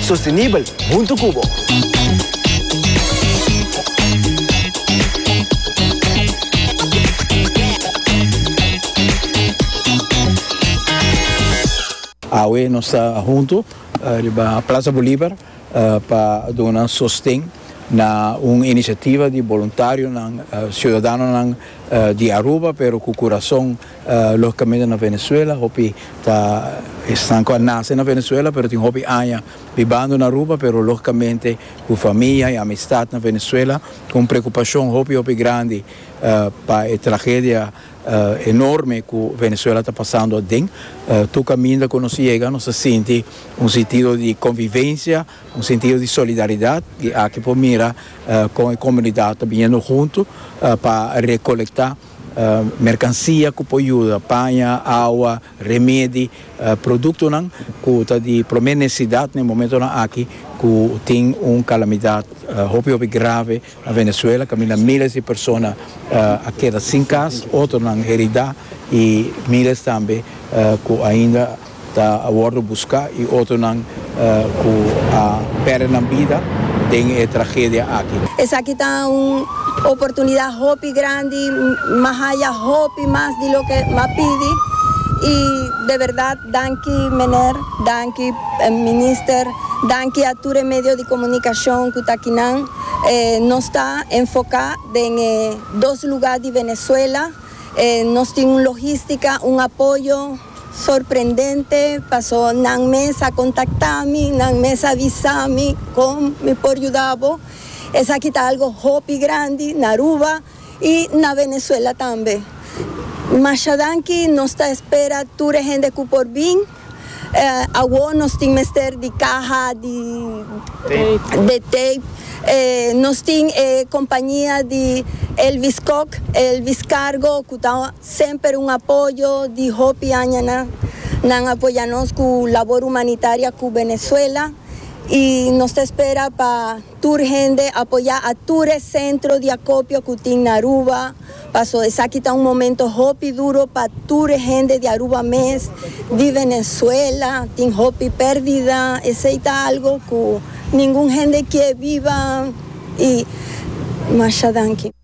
Sostenibel huntu cu bo. Awe nos ta huntu riba Plaza Bolivar pa duna sosten na un iniciativa di boluntarionan, ciudadanonan di Aruba pero cu curazon. Logicamente na Venezuela hopi ta esnan cu a nace na Venezuela pero tin hopi aña bibando na Aruba pero logicamente cu famia y amistad na Venezuela cu un preocupacion hopi hopi grandi pa e tragedia enorme cu Venezuela ta pasando aden tur caminda cu nos yega nos a sinti un sentido di convivencia un sentido di solidaridad y aki por mira con e comunidad ta biniendo hunto pa recolecta Merkansia ku por yuda, paña, awa, remedi, produktonan ku ta di promé nesesidat na e momentonan aki ku tin un kalamidat hopi hopi grave na Venezuela kaminda míles di persona a keda sin kas, otronan heridá i míles tambe ku ainda. Ta a wordo busca y otronan cu a perde nan bida den e tragedia aki. Esaki ta un oportunidad hopi grandi, m'a haya hopi mas di loke m'a pidi y de verdad danki meneer, danki minister, danki a tur e medio di comunicacion cu ta kinan. Nos ta enfoca den e dos lugar di Venezuela, nos tin un logistica, un apoyo. Sorprendente paso nan mes a kontaktami, nan mes a visami kon mi por yuda bo. Esaki ta algo hopi grandi na Aruba i na Venezuela tambe. Masha danki, nos ta espera tur e hende ku por bin. Awor nos tin mester di kaha di de tape. Nos tin e kompañia di Elvis Kok, Elvis Cargo, ku ta. Semper un apoyo di hopi aña nan. Nan a apoya nos cu labor humanitaria cu Venezuela y nos ta espera pa tur hende apoya a tur e centro di acopio cu tin na Aruba, paso esaki ta un momento hopi duro pa tur e hende di Aruba mes, di Venezuela, tin hopi perdida, esey ta algo cu ningun hende kier biba y masha danki.